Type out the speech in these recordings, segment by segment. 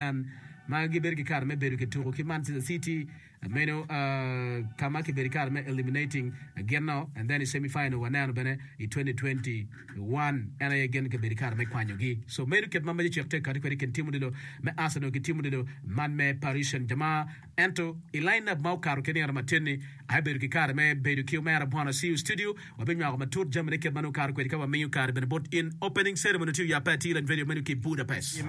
Can ma gibedo ki kare me bedo ki tuku ki Manchester City meno ka ma kibedo ki kare me eliminating gin no and then i semi final waneno bene i 2021 en aye gin kibedo ki kare me kwanyo gi so meno kit ma Magic cek tek kati kwede i kin tim odilo me Arsenal ki tim odilo man me Paris Saint Germain. Ento, i lainap ma okato ki nino matin-ni, aye bedo ki kare me bedo ki Omera Bwana Siu Studio. Wabinywako matut jamine kit ma nongo kato kwede ka wamiyo kare bene bot in. Opening Ceremony otiyo yape atir en vedio meno ki Budapest.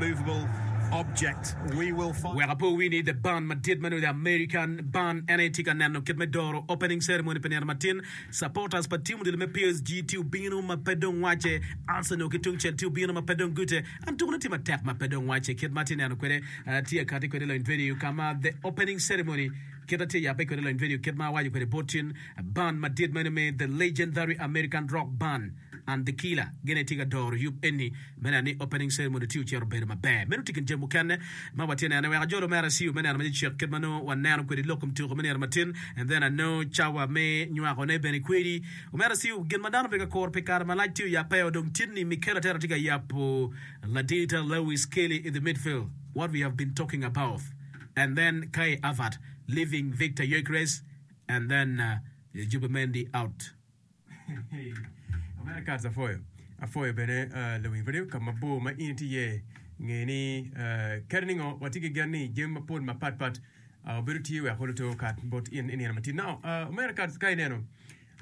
Wek ape owii ni The Band madit meno The American Band en aye tye ka neno kit me doro Opening Ceremony pi nino matin. Supporters pa team odilo me PSG tye obino ma pe dong Wace, Arsenal ki tungcel tye obino ma pe dong Goethe, An tukona tye matek ma pe dong wacce. Kit ma atye neno kwede, atye akati kwede lony venue ka ma The Opening Ceremony kit atye yabbe kwede lony venue kit ma awaco kwede bot cin band madit meno me The Legendary American Rock Band and The Killer gin aye tye ka doro yub eni me neno ni Opening Ceremony tye ocito obedo maber. Meno tye kin jami mukene ma watye neno. Wek ajol omera CU me neno macecek kit ma nongo waneno kwede lok i mtuka me nino matin and then I know cawa me nywakone bene kwedi. Omera Siu, gin ma dano pe ka kuro pi kare malac tye oyabbe-o dong Titni Mikel Arteta tye ka yabo ladita Lewis Skelly in the midfield what we have been talking about and then Kai Havert leaving Victor Gyökeres and then Zubimendi out. Omera Kats apwoyo apwoyo bene Lewin Radio ka mabor ma in itye iye nge ni kadi ningo watye ki gen ni jami mapol mapat pat Bedo tye wek olo to kat bot in i nino matin nao. Uh, omera kat ka ineno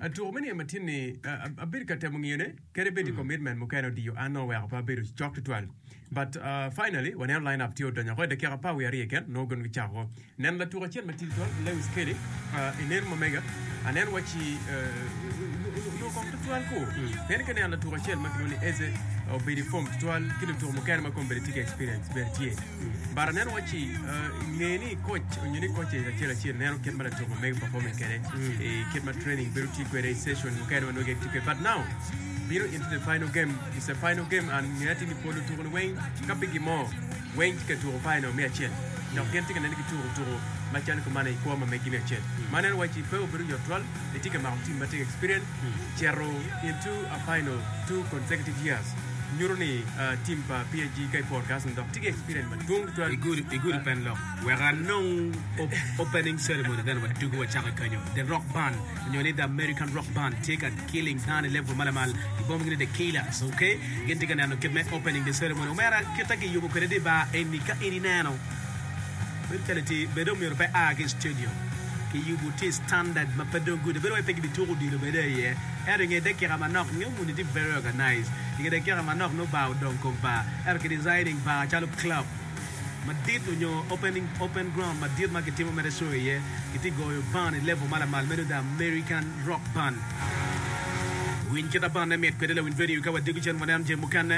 uh, tuko me nino matin ni uh, uh, abedo ka temo ngiyone kede bedi mm. commitment mukene odiyo an no weko pa abedo cok tutwal but uh, finally waneno line up tye odonyo ko dakika pa wi ariye ken no gon gicako neno latuk acel matin twal Lewis Kelly uh, ineno mamega aneno waci uh, no kong tutwal ko mm. ken ke neno latuk acel ma kiloni Eze obedi form tutwal ki lutuk mukene ma kombedi tye experience bene tye But aneno waci nge ni koc onyo ni koc acel acel neno kit ma latuko mege performing kede e kit ma training bedo ti kwede i session mukene ma nwege ti kwede but now bino into the final game is a final game and nge ati ni pol lutuko ni weng ka pe gimo weng ti ka tuko final me acel dok gin ti ka nene ki tuko tuko ma calo kumane i kwo ma megi me acel ma aneno waci pe obedo yot twal Etye ka mako tim ma tye ki experience cito into a final two consecutive years. Nyuto ni tim pa PSG ka i forecasting dok tye ki experience madwong tutwal i gudi pen lok. Wek anong opening ceremony bene wa dugu wacako i kanyo. The Rock Band nyo ni The American Rock Band tye ka killing dano i level ma lamal. Gibomogi ni The Killers, ok? Gin tye ka neno kit me opening the ceremony. Omera, kit ma kiyubo kwede di bar eni ka in ineno. Bedo calo itye bedo omyero pe a ki i stadium ki yubu tye i standard ma pe dong good bedo wai pe ki bi tuko odilo bene i ye ento inge dakika manok inge muni tye very organize inge dakika manok nongo bar odong kong bar ento ki designing bar calo club madit onyo opening open ground madit ma ki timo mere show i ye ki tye goyo band i level ma lamal meno the American rock band winy kita band ne mit kwede lawiny video ka wa diko cen waneno jami mukene.